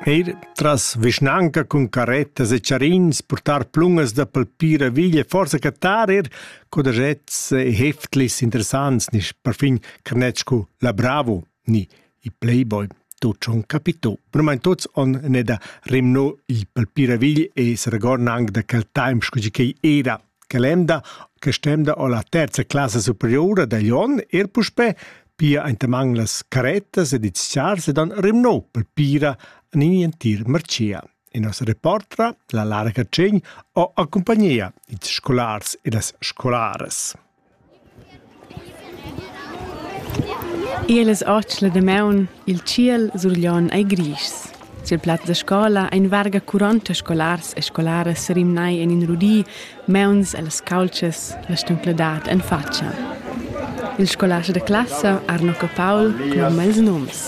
Eir tras vischnanca cun carrettas e charins purtar plungas da palpira veglia forsa cattar eir codaschets e heftlis interessants nisch perfin carnets scu la Bravo ni i Playboy. Tuot schon capito. Brumain tuots on ne da rimno il palpira vegl e saragorn anc da quel taimp scu chi quai era. che l'emda che stemda o la terza classa superiora dagl onn er puspè pia entaman las carettas ed ils chars ed han rimnò per pira en in entir marcia. E nos reportra, la Lara Catschegn, ho accompagnia ils scolars e las scolaras. Ier las otg la damaun, il tschiel surglion ei grischs. Sil plaz da scola ein varga quaranta scolars e scolaras serimnai en in rudi, meuns ellas caultschas, la stuncladad en fatscha. Il scolast da classa Arno Capaul cloma ils nums.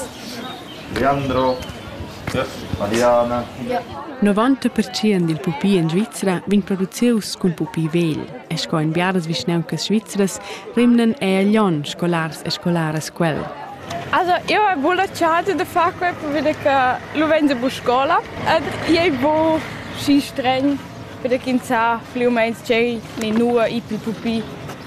Leandro, Mariana. Novanta pertschient dil pupi en Svizra vegn producius cun pupi vegl e sco en biaras vischnauncas svizras rimnan ei a Glion scolars e scolaras quel. Also, eu hai buca la chance de far quei perché che lu vegn bu scola ed ei bu schi streng perché ins sa pli u meins tgei ni nua i pil pupi.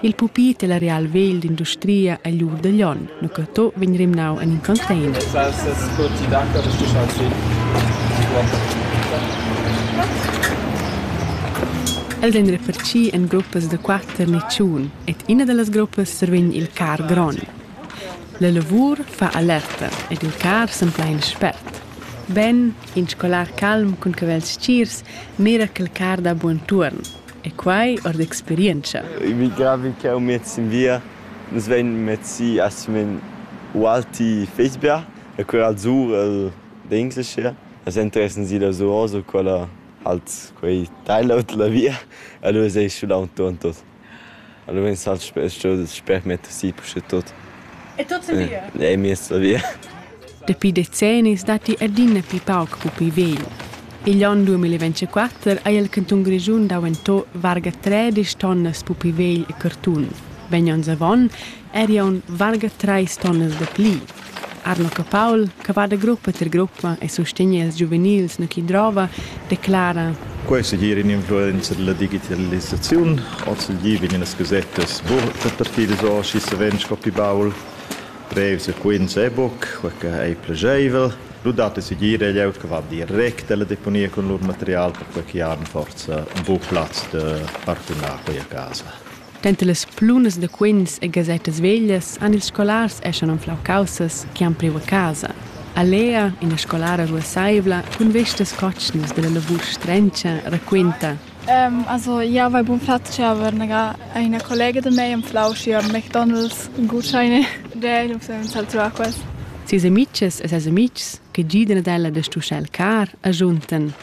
Il pupi della real vegl d'industria egl ur da Glion, Nucato, vegn rimnau en in container. sco ti daca de stischar si. Els ein reparti en gruppas da quater ni tschun ed ina dallas gruppas survegn il car gron. La lavur fa alerta ed il car sempla in spert. Ben, in scolar calm cun cavels stgirs mira quel car da buon tuorn. E quai ord experientscha. Emigrà vi ch'eu met sin via, nus vain mezzi a simen ualti Fecebia, e quella al sur el d'Englisch era. As interessan si da Zuoz u quella halt quei tailaut la via, allura seis schulau tuon tot. Allura vegn salt sper, sper metter si puschetut. E tut sin via? E miez la via. Dapi decennis datti adina pli pauc pupi vegl. Igl onn 2024 ha il cantun Grischun daventà varga tredisch tonnas pupi vegl e cartun. Vegn onns avon eri aunc varga trais tonnas da pli. Arno Capaul, che va da gruppa tier gruppa e sustegna ils giuvenils nu chi drova, declara, Quai è segir in'influenza da la digitalisaziun. Ozendi vegnan gasettas repartidas or, sch'i savens sco pli baul. Brevs e quints è buc quei che ei plascheivel. Lu dat ei segir ei glieud che va direct alla deponia cun lur material, perquei ch'i han forsa buc plaz da partunar quei a casa. Denter las plunas da quints e gasettas veglias han ils scolars eschan anflau caussas che han priu a casa. A Lea, ina scolara ruasseivla cun vestas cotschnas dalla lavur strenscha, raquinta. Also, jau vai bun flatg aber naga ina collega da mei anflau sia McDonald's gutscheine. Der nus ein salzau quas. Ses amitgs e ses amitgs che gidan ad ella da stuschar il car, agiuntan.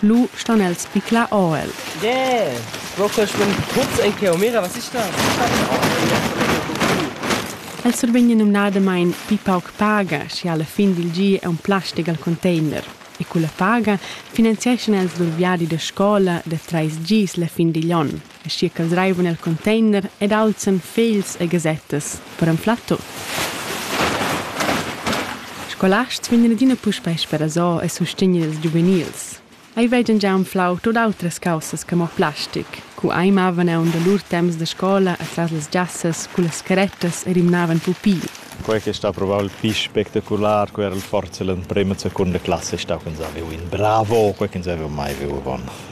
Lu stan els bicla or'el. Yeah! Pro que schwimmen tuts ei cheu, mira, was ist das? El survegn numnadamain pli pauc paga, sche a la fin dil gi è un plastic al container, e culla paga finanzieschan els lur viadi da scola da trais gis la fin digl onn. aschia ch'els reivan el container ed alzan fegls e gasettas per anflar tut. Scolasts vegnan adina puspei sperasò e sustegnan ils giuvenils. Ei vegan gia anflau tut autras caussas che mo plastic. Cu ei mavan aunc da lur temps da scola atras las giassas cullas carettas e rimnavan pupi. Quei che sta provau il pli spectacular, quei era forsa l'emprema e seconda classa stau ch'ins havev in bravo, quei ch'ins haveva mai viu avon.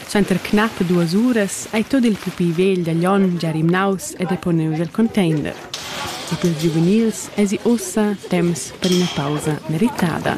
Suenter knappe duas uras ei tot il pupi vegl da Glion gia rimnaus e deponius el container. Et ils giuvenils esi ussa temps per ina pausa meritada.